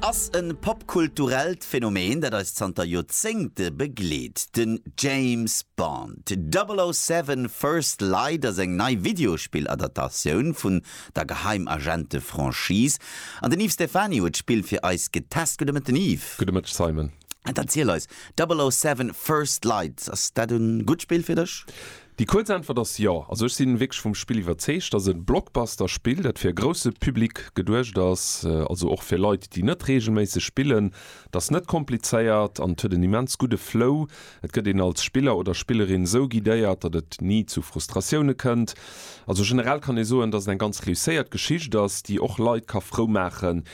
ass e popkulturellt Phänomen, dat eis zanter Joerzéngte begleet. Den James Bond, 007 First Light ass eng nei Videospill-Adaptatioun vun der Geheimagente-Franchise. An den Yves Stephany huet d'Spill fir eis getest. Gudde Mëtten, Yves. Gudde Mëtteg, Simon. Dann erziel eis, 007 First Light, ass dat e gutt Spill fir dech? Déi kuerz Äntwert ass jo. Also ech sinn wierklech vum Spill iwwerzeegt. Ass en Blockbuster Spill dat fir e grousse Public geduecht ass, also och fir Leit déi net reegelméisseg spillen. Et ass net komplizéiert an et huet en immens gudde Flow. Et gëtt een als Spiller oder Spillerin esou guidéiert dat et ni zu Frustratioune kënnt. Also generell kann ee soen dat et eng ganz reusséiert Geschicht ass déi och Leit ka frou maachen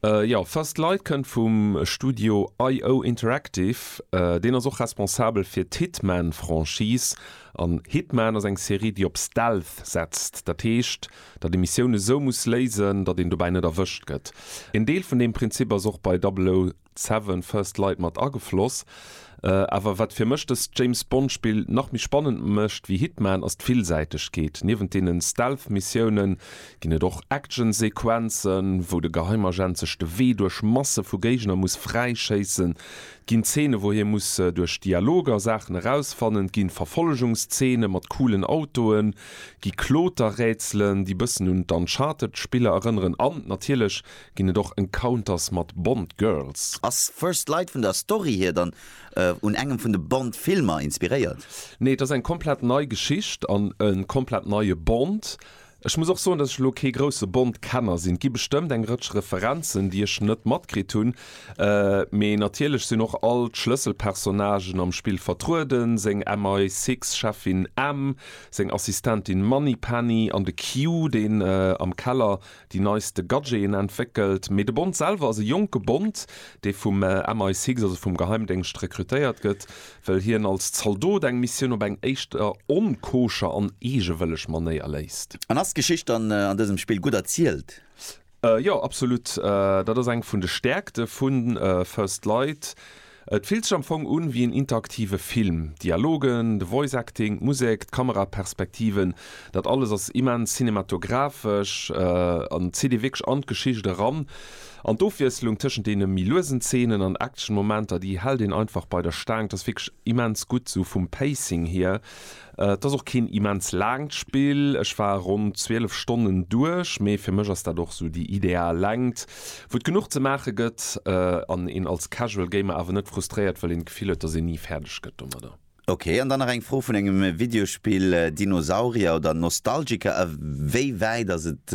Jo, First Light kënnt vum Studio IO Interactive. Deen ass och responsabel fir d'Hitman-Franchise. An Hitman ass eng Serie, déi op Stealth setzt, dat heescht, datt ee Missioune sou muss léisen, datt een dobäi net erwëscht gëtt. Een Deel vun deem Prinzip ass och bei 007. Seven, First Light mat agefloss. Awer wat fir mech dëst James-Bond-Spill nach méi spannend mécht wéi Hitman ass d'Villsäitegkeet. Niewent deenen Stealth-Missiounen ginn et och Action-Sequenzen, wou de Geheimagent sech de Wee duerch Masse vu Géigner muss fräischéissen. Et ginn Zeene wou hie muss duerch Dialoger Saachen erausfannen, et gi Verfollegungszeene mat coolen Autoen, et gi Kloterrätselen, déi bëssen un d'Uncharted-Spiller erënneren an natierlech Ginn et och Encounters mat Bond Girls? Ass First Light vun der Story hier dann un engem vun de Bond Filmer inspiréiert? Nee, et ass eng komplett nei Geschicht an e komplett neie Bond. Ech muss och soen, dass ech elo kee grousse Bond Kenner sinn. Et gi bestëmmt eng Rëtsch Referenzen, déi ech net matkritt hunn, mee natierlech sinn och all d'Schlësselpersonnagen am Spill vertrueden, seng MI Six Cheffin M, seng Assistentin Moneypenny an de Q, deen am Keller déi neiste Gadgeten entwéckelt, mee de Bond selwer ass e jonke Bond, dee vum MI6, also vum Geheimdéngscht, rekrutéiert gëtt, well hien als Zaldot eng Missioun op eng éischter onkoscher an eegewëlleg Manéier léist. An ass d'Geschicht dann an dësem Spill gutt erzielt? Jo, absolut. Dat ass eng vun de Stäerkte vu First Light, Et fillt sech am Fong un wéi en interaktive Film. D'Dialogen, de Voice Acting, d'Musek, d'Kameraperspektiven, dat alles ass immens cinematographesch an zitt ee wierklech an d'Geschicht eran. An d'Ofwiesslung tëschent deene méi luesen Zeenen an Action-Momenter, déi hält een einfach bei der Staang. Et ass wierklech immens gutt, esou vum Pacing hier. Et ass och keen immens laangt Spill, ech war ronn 12 Stonnen duerch, mee fir mech ass dat och sou déi ideal Längt, wou et genuch ze maache gëtt an een als Casual Gamer awer net frustréiert, well een d'Gefill huet, dass een ni fäerdeg gëtt domadder. Ok, an dann nach eng Fro vun engem Videospill, Dinosaurier oder Nostalgiker, a wéi wäit ass et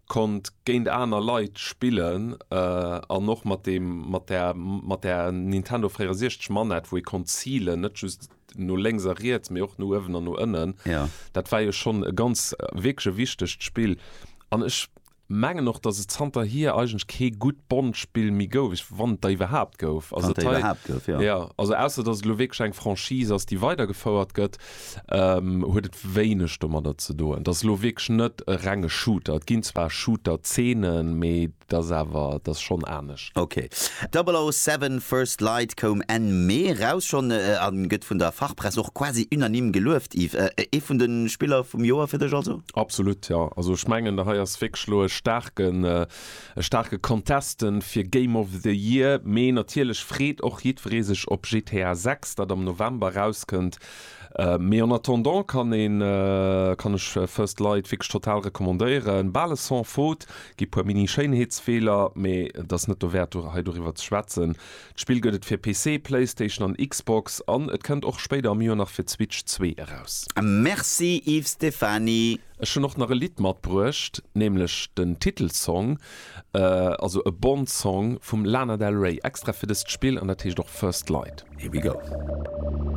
konnt géint aner Leit spillen an och mat deem mat der mat der Nintendo 64 Manett wou ee konnt zilen, net just no lénks a riets mee och no uewen an no ënnen. Jo. Dat war jo schonn e ganz wierklech e wichtegt Spill an ech mengen och datt et zanterhier eigentlech kee gutt Bond-Spill méi gouf, ech wann et der iwwerhaapt gouf. Wann et der iwwerhaapt gouf, jo. Jo, also ausser datt et elo wierklech eng Franchise ass déi weidergefouert gëtt. huet et wéineg domadder ze doen. Et ass elo wierklech net e renge Shooter. Et ginn zwar Shooter-Zeenen, mee et ass awer, et ass schonn anescht. Ok. 007 First Light koum Enn Mee eraus schonn a gëtt vun der Fachpress och quasi unanime gelueft. Yves, ee vun de Spiller vum Joer fir dech also? Absolut, jo. Also ech mengen, hei ass wierklech elo e staarke E staarke Contesten fir Game of the Year, mee natierlech freet och jiddweree sech op GTA 6, dat am November erauskënnt. Mee en attendant kann een, kann ech First Light wierklech total recommandéieren. Bal e Sans-Faute, gi puer Mini-Schéinheetsfeeler, mee et ass net dowäert hei doriwwer ze schwätzen. D'Spill gëtt et fir PC, Playstation an Xbox an et kennt och spéider am Joer nach fir d'Switch 2 eraus. Merci Yves Stephany. Ech hunn och nach e Lidd matbruecht, nämlech den Titelsong, also e Bond-Song vum Lana Del Rey, extra fir dëst Spill, an dat heescht och First Light. Here we go.